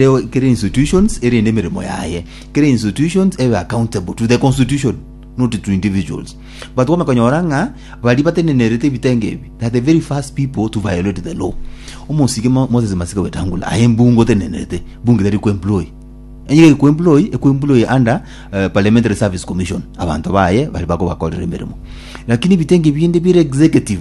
Reo kera institutions erinde emeremo yaye, kera institutions ebe accountable to the constitution not to individuals. But kwamanya konyora ng'a baria batenenerete ebitenga ebi they are the very first people to violate the law. Omosike Mo- Moses Masika Wetangula aye mbunge otenenerete, mbunge tari kuemploy enye gari kuemploy ekuemploy under eh, parliamentary service commission abanto baye bari bakobakorera emeremo lakini ebitenga ebinde bire executive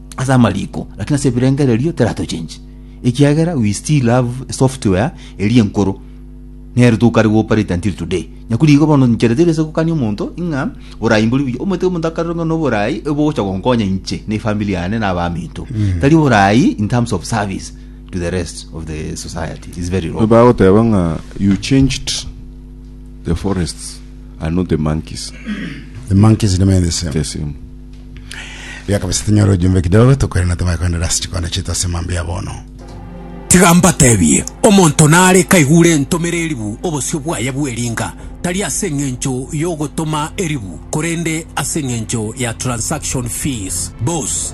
ase amariko, lakini ase ebirengererio teratochenchi, ekiagera we still have a software eria enkoro nere tokare gooperate until today. Nyaku rigo bono nchera teri ase gokania omonto ng'a borai mbori buya. Omanyete omonto akarora ng'a noborai obogocha gonkonya inche na efamiri yane na abaminto. Tari borai in terms of service to the rest of the society. It's very wrong. Bagoteba ng'a you changed the forests I know the monkeys. The monkeys remain the same. The same. Ria kabisa tinyora ujumbe kidogo tukwere na tumaye kwenda rasi chikondo chitu ase mambi ya bono. Tiga mbatebie, omonto nare kaigure entomere eribu obosio bwaye bw'eringa, tari ase eng'encho y'ogotoma eribu, korende ase eng'encho ya transaction fees, bos.